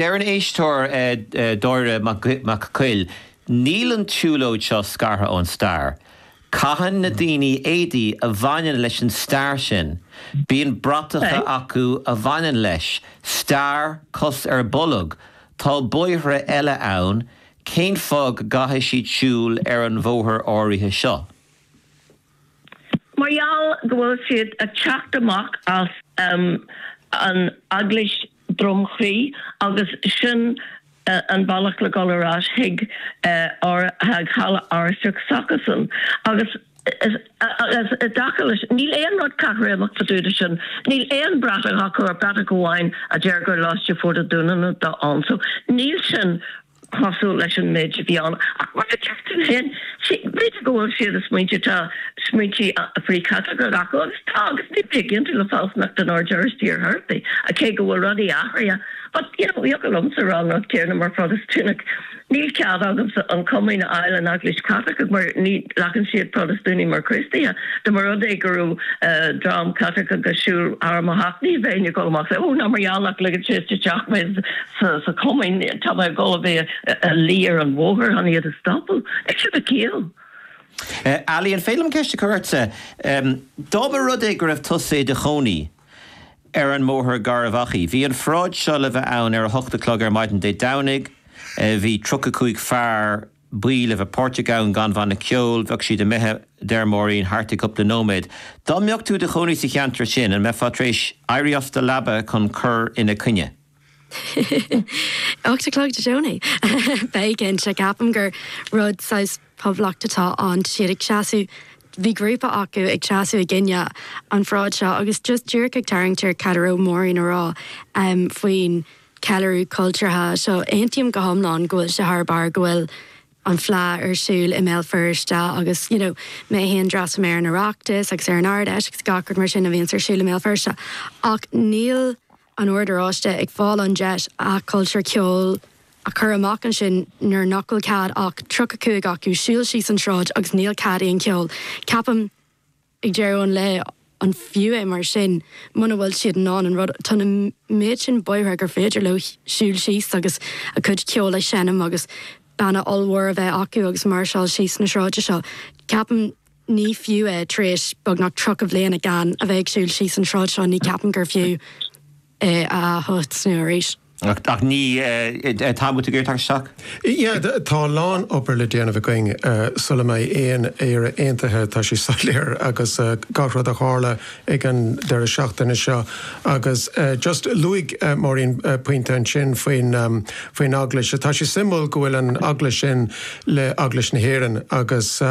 Deir an éisteoir, Dáire Mac Coille, Níl an tsiúlóid seo scartha ón stair. Caitheann na daoine éadaí a bhaineann leis an stair sin. Bíonn bratacha acu a bhaineann leis. Stair, cos ar bolg. Tá bóithre eile ann. Cén fáth go gcaithfidh siad siúl ar an bhóthar áirithe seo? Mar gheall go bhfuil siad ag teacht amach as an Eaglais Droim Chrí agus sin an bealach le dhul ar ais chuig halla Oráisteach s'acusan. Agus i dtaca leis, níl aon rud caithréimeach sa dúda sin. Níl aon bhratach acu, bratach amháin a deir gur Lóiste Phort an Dúnáin atá ann so níl sin. cosúil leis an méid a bhí ann, ach mar a deir tú féin, b'fhéidir go bhfuil siad i smaointe, tá smaointe frith-Chaitliceacha acu, agus tá, agus ní bheinn ag aontú le fealsúnacht an Oird Oráistigh ar chor ar bith, cé go bhfuil rudaí athraithe, but, you know, thiocfadh liomsa rá an rud céanna mar Phrotastúnach, níl cead agamsa an comaoin a fháil san Eaglais Chaitlicigh mar ní ghlacann siad Protastúnaigh mar Chríostaithe, dá mba rud é go raibh dream Caitliceach ag siúl thar mo theach, ní bheinn ag dul amach, oh, ná mar gheall nach ligeann siad isteach mé, sa Chomaoin, tá mé ag dul a bheith ag luí ar an bhóthar chun iad a stopadh. Ag sibh a ciall! Ali, an féidir liom ceist a chur ortsa? Dá mba rud é go raibh tusa i do chónaí ar an mBóthar Garbhachaidh, bhí an pharáid seo le bheith ann ar a hocht a chlog ar maidin Dé Domhnaigh, bhí tríocha cúig fear buí le bheith páirteach ann gan bhanna ceoil, bheadh siad imithe, a deir Máirín, thart i gcupla nóiméad. Dá mbeadh tú i do chónaí sa cheantar sin, an mbeifeá tar éis éirí as do leaba chun cur ina coinne? Ocht a chlog Dé Domhnaigh. Bheinn cinnte. Ceapaim gur rud saghas Poblacht atá ann. Siad ag seasamh, bhí grúpa acu ag seasamh i gcoinne an pharáid seo agus just díreach ag tarraingt ar cad a raibh Máirín ag rá faoin ceiliúradh cultúrtha seo. Aontaím go hiomlán go bhfuil sé thar barr go bhfuil an Fleadh ar siúl i mBéal Feirste agus you know mé féin d'fhreastail mé ar an Oireachtas agus ar an Ard Fheis agus gach rud mar sin a bhíonns ar siúl i mBéal Feirste ach níl an Ord Oráiste ag fáil an deis a chultúr ceoil a chur amach ansin nuair nach bhfuil cead ach 35 acu siúl síos an tsráid agus níl cead aon cheoil, ceapaim, ag deireadh an lae. An fiú é mar sin muna bhfuil siad in ann an rud, tá na méid sin bóithre gur féidir leo siúl síos agus a gcuid ceoil a sheinm agus banna ollmhór a bheith acu agus máirseáil síos na sráide seo, ceapaim. Ní fiú é, tar éis beagnach tríocha bliain gan a bheith ag siúl síos an tsráid seo, ní cheapaim gur fiú é a thosnú arís. Ach ní tá muid ag iarraidh teacht isteach? Yeah, tá a lán obair le déanamh againn sula mbeidh aon Éire aontaithe, tá sé soiléir, agus gach rud a tharla ag an deireadh seachtaine seo. Agus just, luaigh Máirín pointe ansin faoin Eaglais. Tá sé suimiúil go bhfuil an Eaglais sin le Eaglais na hÉireann agus,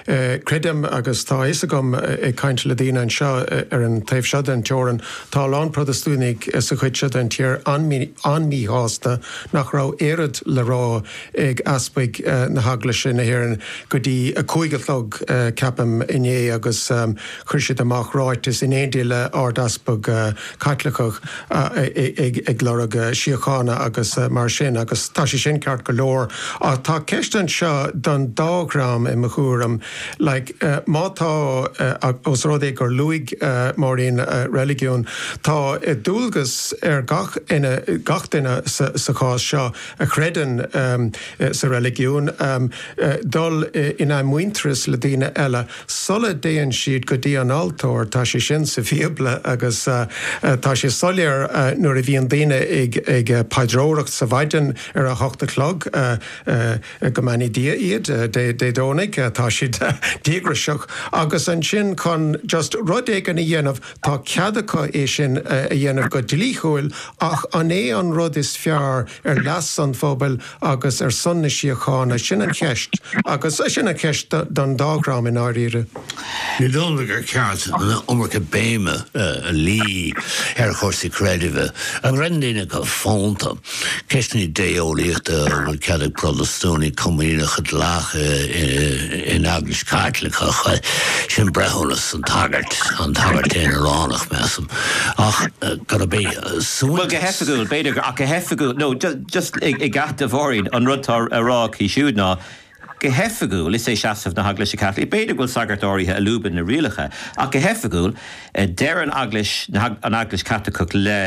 Creidim, agus tá a fhios agam ag caint le daoine anseo ar an taobh seo den teorainn, tá a lán Protastúnaigh sa chuid seo den tír an-míshásta nach raibh oiread le rá ag easpaig na hEaglaise na hÉireann go dtí a cúig a chlog, ceapaim, inné agus, Chuir siad amach ráiteas in éindí le Ard-Easpag Caitliceach ag lorg síochána agus mar sin agus tá sé sin ceart go leor ach tá ceist anseo don dá dhream i mo thuairim like má tá os rud é gur luaigh Máirín reiligiún tá dualgas ar gach duine gach duine sa chás seo a chreideann sa reiligiún dul in athmhuintearas le daoine eile sula dtéann siad go dtí an altóir. Tá sé sin sa Bhíobla agus tá sé soiléir nuair a bhíonn daoine ag paidreoireacht sa mhaidin ar a hocht a chlog, go mbeannaí Dia iad, Dé Domhnaigh, tá siad díograiseach agus ansin chun just rud éigin a dhéanamh, tá cead acu é sin a dhéanamh go dlíthiúil ach an é an rud is fearr ar leas an phobail agus ar son na síochána, sin an cheist agus sin an cheist don dá dhream i ndáiríre. Ní dóigh liom gur ceart an iomarca béime a luí ar chúrsaí creidimh, a gcreideann daoine go fónta, ceisteanna idé-eolaíochta, an bhfuil cead ag Protastúnaigh comaoineach a ghlacadh in Eaglais Caitliceach, sin breithiúnas an tsagairt, an tsagairt aonaránach measaim, ach gurb é. Bhuel, go hoifigiúil, b'fhéidir gur, ach go hoifigiúil, no, just i gcead do Mháirín, an rud atá á rá aici siúd ná, go hoifigiúil, is é seasamh na hEaglaise Caitlicí, b'fhéidir go bhfuil sagairt áirithe a lúbann na rialacha, ach go hoifigiúil, deir an Eaglais, an Eaglais Chaitliceach le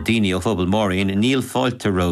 daoine ó phobal Maureen, níl fáilte ró.